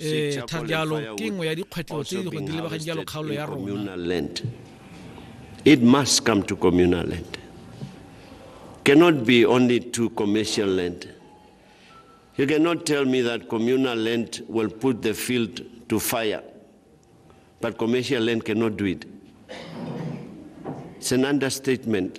ee tha jalo ke nngwe ya dikgwetlho tse di go di lebagang jalo kgaolo ya rona It must come to communal land. Cannot be only to commercial land. You cannot tell me that communal land will put the field to fire, but commercial land cannot do it. It's an understatement.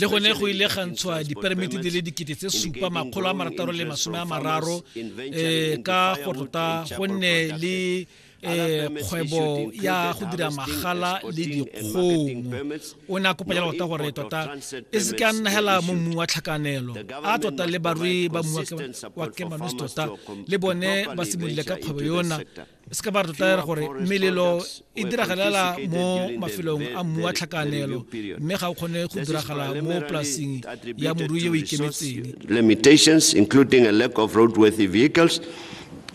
le gone go ile ga ntshwa diperimete di le dikete tse supa makgolo a marataro le masome a mararo um ka go tota gonne le eh kgwebo ya go dira magala le dikgong o ne a kopa jalo tota gore tota e se ka nna hela mo mmu wa tlhakanelo a tota le barui ba mmu wa kemanosi tota le bone ba simolile ka kgwebo yona se ka ba re totela gore melelo e diragalela mo mafelong a mmu wa tlhakanelo mme ga o kgone go diragala mo polasing ya morui e o ikemetseng limitations including a lack of roadworthy vehicles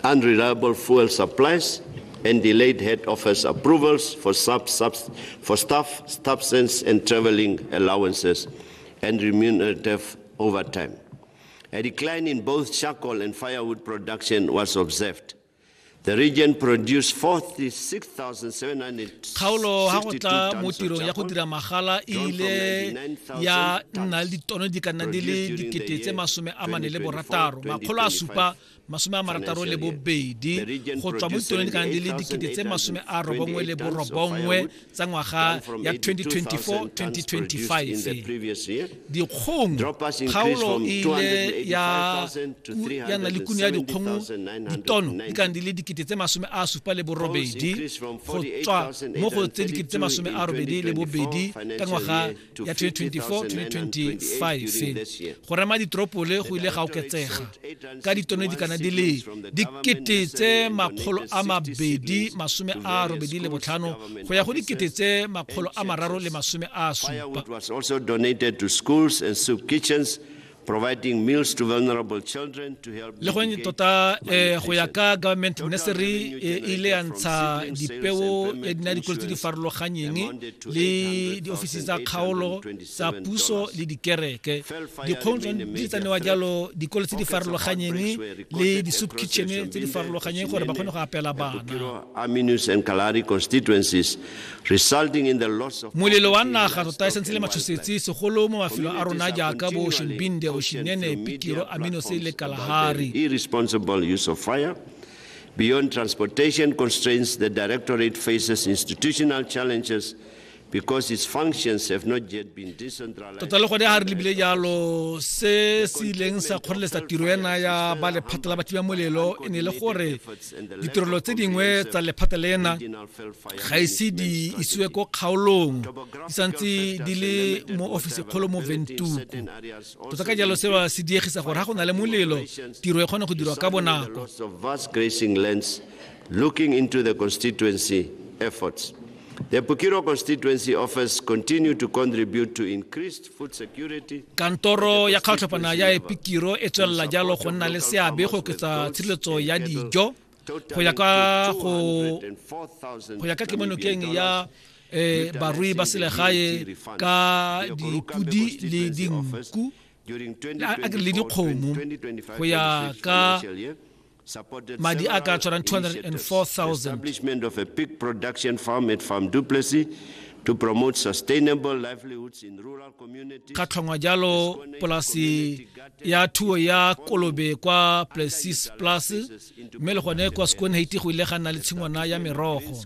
unreliable fuel supplies and delayed head office approvals for, sub, sub, for staff substance and traveling allowances and remunerative overtime. A decline in both charcoal and firewood production was observed. The region produced 46,700 kgaolo ha go tla mo tirong ya go dira magala e ile ya nna le ditono di ka nna di le dikete tse masome a mane le borataro makgolo a supa masome a marataro le bobedi go tswa mo ditoneng di ka nna di le dikete tse masome a robongwe le borobongwe tsa ngwaga ya 2024-2025 dikgong kgaolo e ile ya na le kuno ya dikgong ditono di kana di le dikete tse masome a supa le borobedi go tswa mo go tse dikete tse masome a robedi le bobedi ka ngwaga ya 2024-2025 go rema ditoropole go ile ga oketsega ka ditone di kana di le dikete tse makgolo a mabedi masome a robedi le botlhano go ya go dikete tse makgolo a mararo le masome a supa providing meals to vulnerable children to help le gone tota eh, go ya ka government ministry e ile ya ntsha dipeo ya dina dikolo tse di farologanyeng le diofisi tsa kgaolo tsa puso le dikereke dikgong di tsanewa jalo dikolo tse di farologanyeng le di-soup kitchen tse di farologanyeng gore ba kgone go apela bana constituencies Molelo wa naga tota e sentse le matshosetsi segolo mo mafelong a rona jaaka bo Ocean Binde, Oshinene, Pikiro, Aminose le Kalahari. Beyond transportation constraints, the Directorate faces institutional challenges because its functions have not yet been decentralized. Tota le gone ha re lebile jalo se se ileng sa kgoreletsa tiro ena ya ba lephata la bathiba molelo e ne le gore ditirelo tse dingwe tsa lephata lena ga ise di isiwe ko kgaolong di santse di le mo ofisi kgolo mo ventuku tota ka jalo seo se diegisa gore ga go na le molelo tiro e kgone go dirwa ka bonako looking into the constituency efforts the Pukiro constituency offers continue to contribute to increased Kantoro ya kgatlhopana ya Epikiro e tswelela jalo go nna le seabe go oketsa tshireletso ya dijo go ya ka go go ya ka kemonokeng ya eh, barui ba selegae ka dipudi le dinku le dikgomo go ya ka madi a ka tshwarang 204000 to promote sustainable livelihoods in rural communities ka tlhongwa jalo polasi ya thuo ya kolobe kwa places plus mme le gone kwa sekonheiti go ile ga nna le tshingwana ya merogo